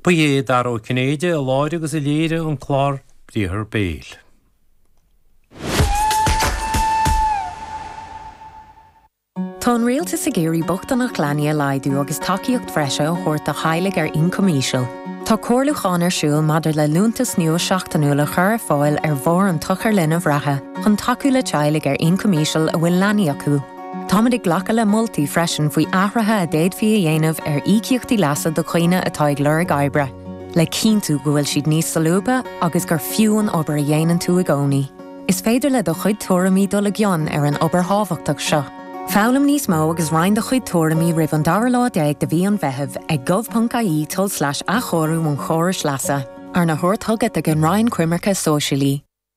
Ba é Dara Ó Cinnéide a láithrigh agus a léirigh an clár Briathar Béil. Tá an Rialtas ag iarraidh bochtaineacht leanaí a laghdú agus tacaíocht bhreise a thabhairt do theaghlaigh ar ioncam íseal. Tá comhairliúchán ar siúl maidir le liúntas nua seachtainiúil a chur ar fáil ar bharr an tsochair linbh reatha chun tacú le teaghlaigh ar ioncam íseal a bhfuil leanaí acu. Táimid ag glacadh le moltaí freisin faoi athruithe a d'fhéadfaí a dhéanamh ar íocaíochtaí leasa do dhaoine atá ag lorg oibre, le cinntiú go bhfuil siad níos solúbtha agus gur fiú an obair a dhéanann tú i gcónaí. Is féidir le do chuid tuairimí dul i gcion ar an obair thábhachtach seo. Foghlaim níos mó agus roinn do chuid tuairimí roimh an dara lá déag de mhí an Mheithimh ag gov.ie tulslais athchóiriú an chórais leasa, arna thabhairt chugat ag an Roinn Coimirce Sóisialaí.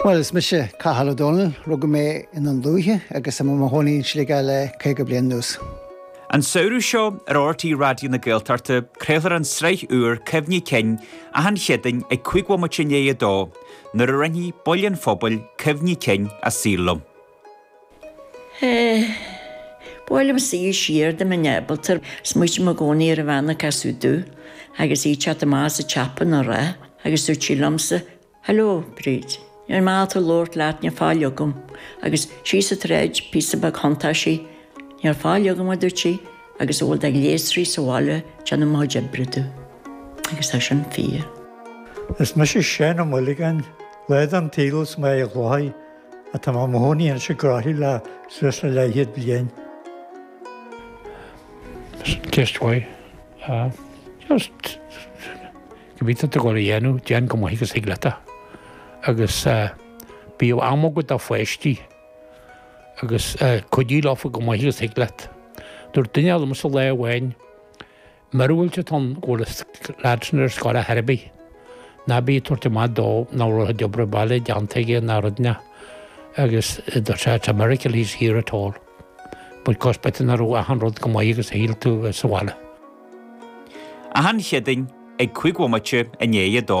Bhuel, is mise Cathal Ó Dónaill. Rugadh mé i nDún Lúiche agus tá mé i mo chónaí in Sligeach le caoga bliain anuas. An samhradh seo ar RTÉ Raidió na Gaeltachta craolfar an tsraith úr Cuimhní Cinn achan Chéadaoin ag cúig bhomaite i ndiaidh a dó, nuair a roinnfidh baill an phobail cuimhní cinn a saol liom. Ba mhaith liomsa a dhul siar dá mbeinn ábalta. Smaoitím i gcónaí ar an bhean a casadh domh agus í ag teacht amach as an tsiopa ina rith agus dúirt sí liomsa, Hello, Bríd. Níor maith tú labhairt leat, níl faill agam. Agus síos an tsráid, píosa beag thiontaigh sí. Níl faill agam, a dúirt sí, agus a bhfuil de ghléasraí sa bhaile ag déanamh mo chuid oibre domh. Agus tá sin fíor. Is mise Seán Ó Maolagáin, lá den tsaol as Mín an Chladaigh Tá mé i mo chónaí anois i gCroithlí le suas le leathchéad bliain. Just why? Just cibé atá tú ag gabháil a dhéanamh, déan chomh maith agus thig leat é. Agus bíodh am agat do pháistí agus cuidigh leofa chomh maith agus thig leat. Dúirt duine eile liomsa lá amháin, Míorúilt atá ann go bhfuil an lad sin ar scoil ar chor ar bith. Ná bí ag tabhairt amach dó nach raibh a obair bhaile déanta aige ná rud ná agus it's a miracle he's here at all. But 'cause b'fhéidir nach raibh achan rud chomh maith agus a shíl tú sa bhaile. Achan Chéadaoin ag cúig bhomaite i ndiaidh a dó.